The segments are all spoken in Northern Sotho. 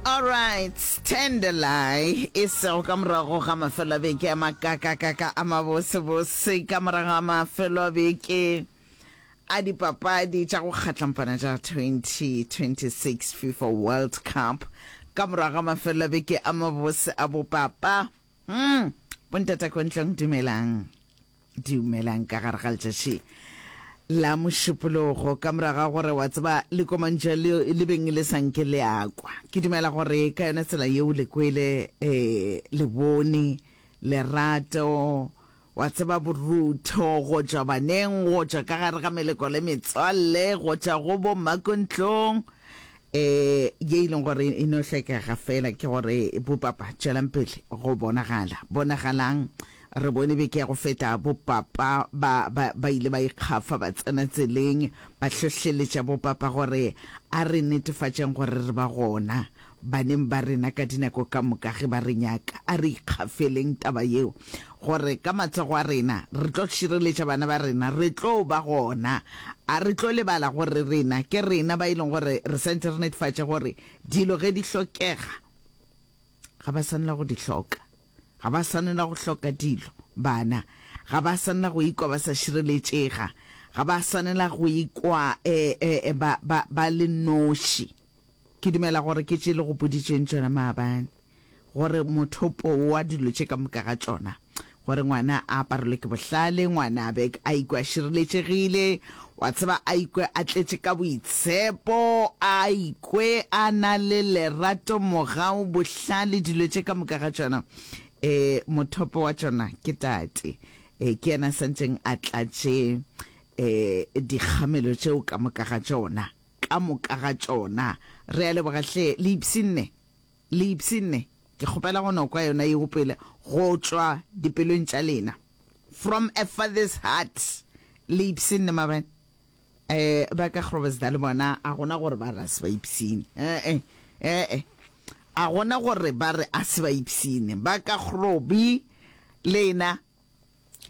Alright, Tenderly e sego ka morago ga mafelo a beke a makakakaka a mabosebose ka morago ga mafelo a beke a dipapadi tša go kgatlampana tša 2026 FIFA World Cup ka morago ga mafelo a beke a mabose a bopapa Umm bontata ko ntlong dumelang dumelang ka gare ga letšatši la mošupologo ka morago ga gore wa tseba lekomantša leo le beng le sanke le akwa ke dumela gore ka yona tsela yeo le kwele um lebone lerato Wa tseba borutho, go tšwa baneng, go tšwa ka gare ga meleko le metswalle, go tšwa go bommakontlong, e, ye e leng gore e no hlokega fela ke gore, bopapa, tšwelang pele go bonagala. Bonagalang, re bone beke ya go feta, bopapa ba, ba, ba ile ba ikgafa, ba tsena tseleng, ba hlohleletša bopapa gore, A re netefatšeng gore re ba gona. Baneng ba rena ka dinako ka moka ge ba re nyaka, a re ikgafeleng taba yeo, gore ka matsogo a rena re tlo šireletša bana ba rena. Re tlo ba gona. A re tlo lebala gore rena ke rena ba e leng gore re santše re netefatša gore dilo ge di hlokega, ga ba swanela go di hloka. Ga ba swanela go hloka dilo. Bana ga ba swanela go ikwa ba sa šireletšega. Ga ba swanela go ikwa ba le noši. Ke dumela gore ke tše le go boditšeng tšona maabane, gore mothopo wa dilo tše ka moka ga tšona, gore ngwana a aparelwe ke bohlale, ngwana a be a ikwe a šireletšegile, wa tseba, a ikwe a tletše ka boitshepo, a ikwe a na le lerato, mogau, bohlale, dilo tše ka moka ga tšona. E, mothopo wa tšona ke Tate. E, ke yena a sa ntšeng a tlatše e, dikgamelo tšeo ka moka ga tšona. ka moka ga tšona. Re a leboga hle, le ipshinne, le ipshinne. Ke kgopela go no kwa yona yeo pele, go tšwa dipelong tša lena. From a father's heart, le ipshinne mabane. E, ba ka Groblersdal bona a gona gore ba re a se ba ipshine. E-e, e-e. A gona gore ba re a se ba ipshine. Ba ka Grobi, lena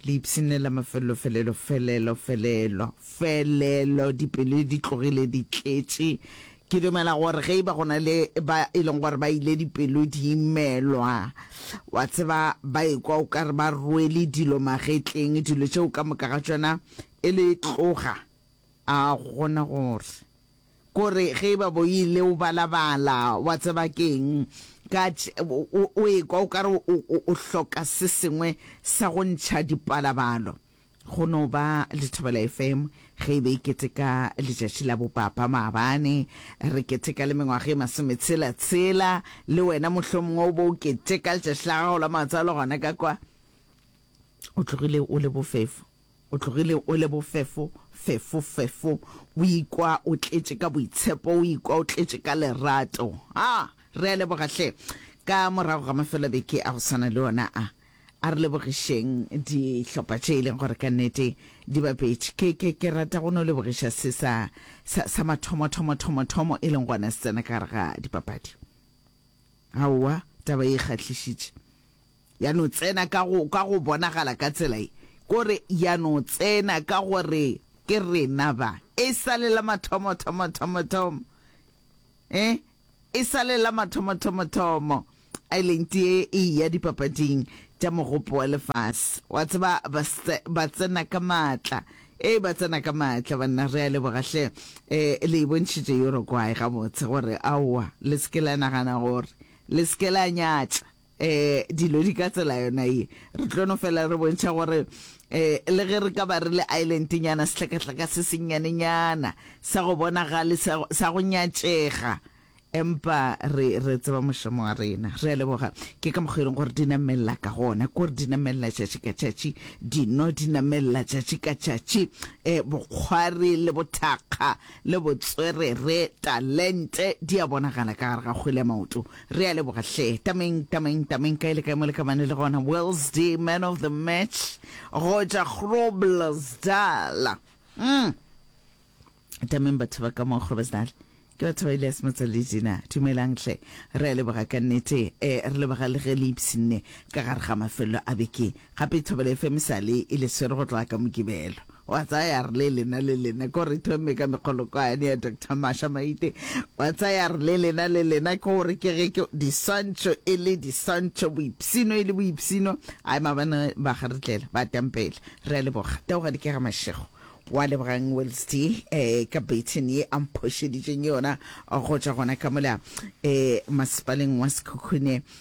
Le ipshinela mafelelo felelo felelo felelo felelo dipelo di tlogile di tletše Ke dumela gore ge e ba go na le ba e leng gore ba ile dipelo di imelwa wa tseba ba ekwa o ka re ba rwele dilo magetleng dilo tšeo ka moka ga tšona e le tloga a gona gore Kore ge eba bo ile o balabala, wa tseba ke'ng? Ka o, o ekwa o ka re o, o, o hloka se sengwe sa go ntšha dipalabalo. Go no ba le Thobela FM ge e be e keteka letšatši la bopapa maabane. Re keteka le mengwaga e masometshela-tshela. Le wena mohlomongwe o bo o keteka letšatši la gago la matswalo gona ka kwa. O tlogile o le bofefo. O tlogile o le bofefo, fefo, fefo. O ikwa o tletše ka boitshepo, o ikwa o tletše ka lerato. Ha! Re a leboga hle. Ka morago ga mafelo a beke a go swana le ona a, a re lebogišeng dihlopha tše e leng gore ka nnete di bapetše. Ke, ke, ke rata go no lebogiša se sa, sa, sa mathomo, thomo, thomo, thomo, e leng gona se tsena ka gare ga dipapadi. Aowa, taba ye e kgahlišitše. Ya no tsena ka go, ka go bonagala ka tsela e, ke gore ya no tsena ka gore ke rena ba. E sa le la mathomo, thomo, thomo, thomo. Eh? E sa le la mathomo, thomo, thomo. Island ye e ya dipapading tša mogopo wa lefase. Wa tseba ba, ba tsena ka maatla. E ba tsena ka maatla banna re a leboga hle. Eh, le bontšhitše Uruguay gabotse gore aowa le se ke la nagana gore le se ke la nyatša. dilo di ka tsela yona ye. Re tlo no fela re bontšha gore le ge re ka ba re le islentinyana, sehlakahlaka se sennyanenyana, sa go bonagale, sa, sa go nyatšega, empa re, re tseba mošomo wa rena. Re a leboga. Ke ka mokgwa e leng gore di namelela ka gona, kore di namelela tšatši ka tšatši, dino di namelela tšatši ka tšatši, bokgwari le bothakga le botswerere, talente, di a bonagala ka gare ga kgwele ya maoto. Re a leboga hle. Tameng, Tameng, Tameng, kae le kae mo le ka bane le gona. Wellsdy, man of the match, go tšwa Groblersdal. Mm. Tameng batho ba ka mo Groblersdal. Ke batho ba Elias Motsaledi na. Dumelang hle. Re a leboga ka nnete. Eh, re leboga le ge le ipsinne ka gare ga mafelelo a beke Gape thobela e femisale e le swere go tloga ka Mokibelo. Wa tsaya ya re le lena le lena ko re thome ka mekgolokwane ya Doctor Masha Maite. Wa tsaya ya re le lena le lena ko re ke ge ke diswantšho e le diswantšho, boipsino e le boipsino. Ai mabane ba ga re tlela, ba tampela. Re a leboga. Taoga Dikega Mashego. Wa lebogang Welsty eh, ka baton ye a mphošeditšeng yona go tšwa gona ka mola eh, masepaleng wa Sekhukhune.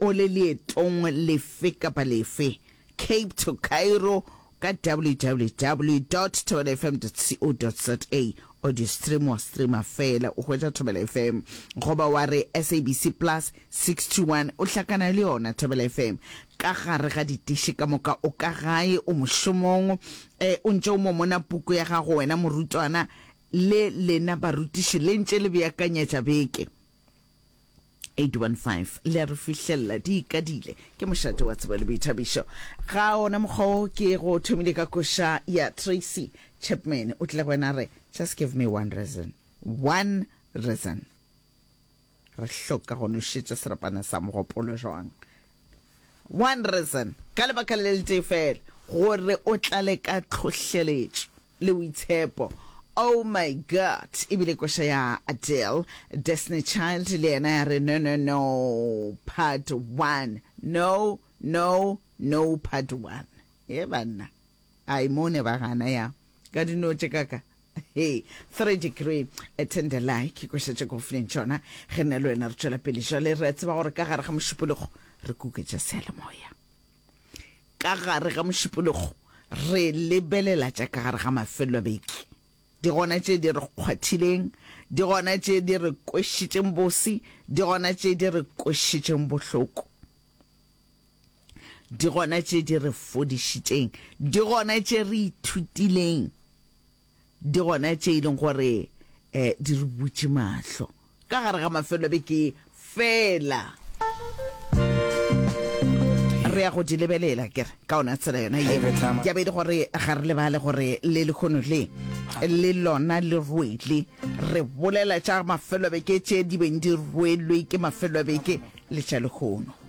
O le leetong lefe kapa lefe, Cape to Cairo, ka www dot thobelafm dot co dot za, o di stream wa streama feela o hwetša Thobela FM. Goba wa re SABC Plus 61 o hlakana le yona Thobela FM. Ka gare ga ditiši ka moka o ka gae, o mošomong, e, o ntše o momona puku ya gago wena morutwana le lena barutiši le ntše le beakanyetša beke. 815 le a re fihlelela di ikadile ke mošate wa tsebo le boithabišo ga ona mokgwa o ke go thomile ka koša ya tracy chapman o tlile go wena a re just give me one reason one reason re hloka go nošetša serapana sa mogopolo jwang one reason ka lebaka le le tee fela gore o tlale ka tlhohleletšo Le boitshepo. Oh my God! E bile koša ya Adele. Destiny Child le yena ya re, No, no, no, part one. No, no, no, part one. Ye banna. Ai, mo ne ba gana ya. Ka dinotše ka ka. Hey, three degree, a tender lie, ke koša tše ka ofileng tšona. Ge nna le wena re tšwela pele jwale, re a tseba gore ka gare ga mošupologo re kuketša seyalemoya. Ka gare ga mošupologo re lebelela tša ka gare ga mafelobeke, di gona tše di re kgwathileng, di gona tše di re kwešitšeng bose, di gona tše di re kwešitšeng bohloko, di gona tše di re fodišitšeng, di gona tše re ithutileng di gona tše e leng gore um di re butše mahlo ka gare ga mafelo a beke ye fela re ya go di lebelela kere ka ona tsela yona ye ya bedi gore ga re lebale gore le lekgono le le lona le rwele re bolela tša mafelobeke tše di beng di rwelwe ke mafelobeke le tša lekgono